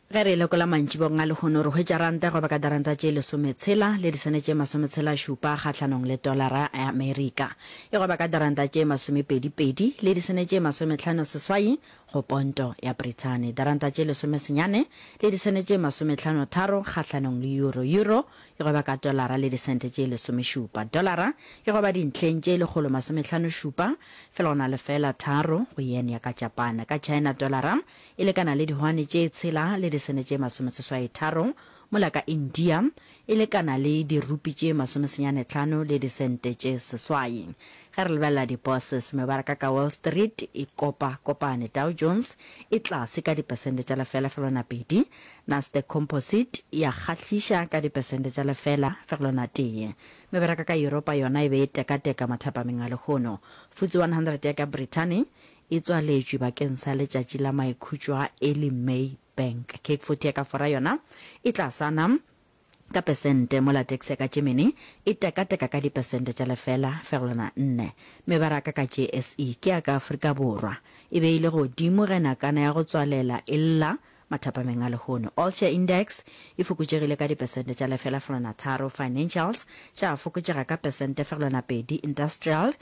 Ge re lekola mantšibong a lehono, re hwetša ranta e roba ka diranta tše lesometshela le disene tše masometshelašupa kgahlanong le tolara ya Amerika. E roba ka diranta tše masomepedipedi le disene tše masomehlano seswai go ponto ya Brithani, diranta tše lesomesenyane le disene tše masomehlano tharo kgahlanong le euro, euro, e goba ka dolara le disente tše lesomešupa. Dolara e goba dintlheng tše lekgolo masomehlano šupa, fela go na le fela tharo, go yen ya ka Japana. Ka China dolara e lekana le dihwane tše tshela le disene tše masomeseswai tharo, mola ka India e lekana le dirupi tše masomesenyane tlhano le disente tše seswai. Ge re lebelela di-bourses, mebaraka ka Wall Street e kopa kopane, Dow Jones e tlase ka dipesente tša lefelafelwana pedi, Nasdaq Composite ya kgahliša ka dipesente tša lefela fegelwa na tee. Meberaka ka Yuropa yona e be e tekateka mathapameng a lehono. FTSE 100 ya ka Brithani e tswaletšwe bakeng sa letšatši la maikhutšo a early May Bank. CAC 40 ya ka Fora yona e tlasana ka pesente mola tax ya ka Germany e tekateka ka dipesente tša lefela fegelwana nne. Mebaraka ka JSE ke ya ka Afrika Borwa e be e le godimo ge nakana ya go tswalela e lla mathapameng a lehono. All Share Index e fokotšegile ka dipesente tša lefela fegelwana tharo, Financials tša fokotšega ka pesente fegelwana pedi, Industrial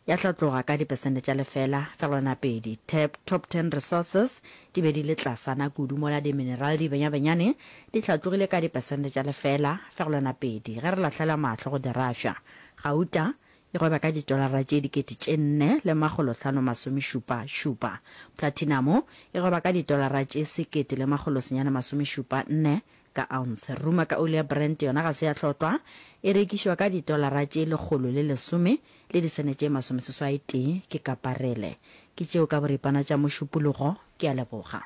ya hlatloga ka dipesente tša lefela fegelwana pedi. Tab Top Ten Resources di be di le tlasana kudu mola diminerale di benyabenyane di hlatlogile ka dipesente tša lefela fegelwana pedi ge re lahlela mahlo go Dirašwa. Gauta e gweba ka ditolara tše dikete tše nne le makgolo hlano masomešupa šupa. Platinamo e gweba ka ditolara tše sekete le makgolo senyane masomešupa nne ka ounce. Ruma ka oli ya Brent yona ga se ya hlotwa, e rekišwa ka ditolara tše lekgolo le lesome le disene tše masomeseswai tee ke kaparele. Ke tšeo ka boripana tša mošupologo. Ke a leboga.